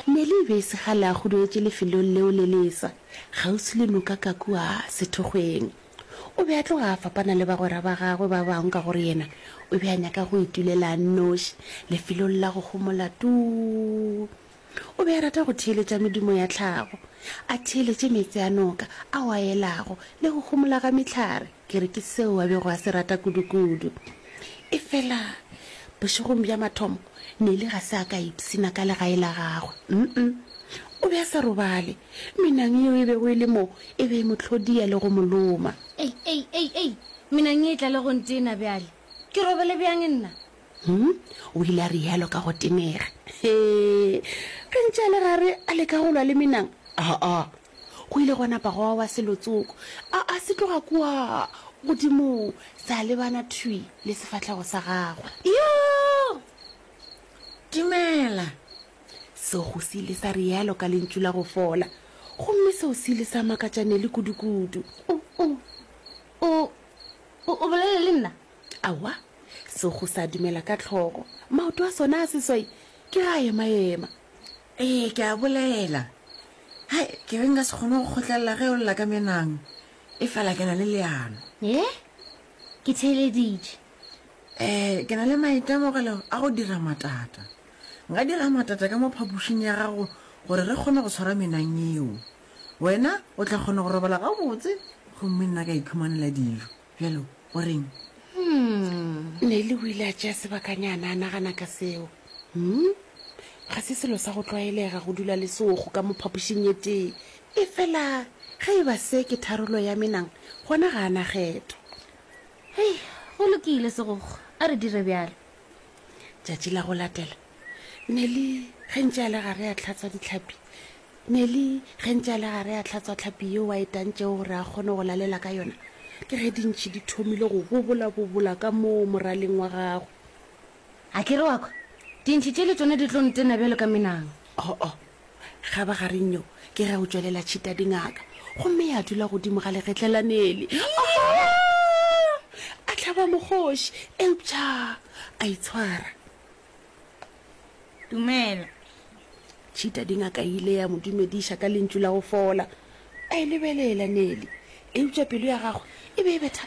Nelly e be e se kgale a huduetše lefelong leo le lesa, kgauswi le noka ka kua sethokgweng. O be a tloga a fapana le bagwera ba gagwe ba bangwe ka gore yena o be a nyaka go itulela a nnoši lefelong la go homola tuu. O be a rata go theeletša medumo ya tlhago, a theeletše meetse a noka ao a elago le go homola ga mehlare. Ke re ke seo a bego a se rata kudukudu. Efela bošegong bja mathomo, Nelly ga se a ka ipshina ka legae la gagwe. Um-um. O be a sa robale. Menang yeo e bego e le moo e be e mo tlhodia le go mo loma. Ei, ei, ei, ei! Menang ye e tla le go ntena bjale. Ke robele bjang nna? Um, o ile a realo ka go tenega. Hee, ge ntše a le gare a leka go lwa le menang, aa, Go ile gwa napa gwa wa selo tsoko, a, a se tloga kua godimong, sa lebana thwi le sefahlego sa gagwe. Yo! Dumela! Sego se ile sa realo ka lentšu la go fola, gomme seo se ile sa makatša Nelly kudukudu. O, o, o, o, o bolela le nna? Aowa, sego sa dumela ka hlogo, maoto a sona a seswai ke ge a ema-ema. Ee, ke a bolela. Hai, ke be nka se kgone go kgotlelela ge o lla ka menang, efela ke na le leano. Ee, ke theeleditše. Ee, ke na le maitemogelo a go dira matata. Nka dira matata ka mo phapošing ya gago gore re kgone go tshwara menang yeo. Wena o tla kgona go robala gabotse gomme nna ka iphumanela dijo. bjalo go reng Hmm. nele o ile a tšea sebakanyana a nagana ka seo Hmm. ga se selo sa go tlwaelega go dula le seogo ka mo phapošing ye tee e fela ge e ba se ke tharolo ya menang gona ga a na kgetho Hei, go lokile segogo, a re dire bjalo. tšatši la go latela neli ge ntše a le gare a tlhatswa ditlhapi neli ge ntše a le gare a tlhatswa tlhapi yeo a etantšego gore a kgone go lalela ka yona ke ge dintšhi di thomile go bobolabobola ka moo moraleng wa gago a kere wakwa dintšhi tše le tsone di tlo ntena bjalo ka menang oo oh, oh. ga ba gareng yo ke ge o tšwelela tšhita dingaka gomme ya dula godimo ga legetlelanele a tlhaba mogoši eupša a itshwara dumela tšhita dingaka e ile ya mo dumediša ka lentšu la go fola a e lebelela nele eupša pelo ya gagwe e be e bethaka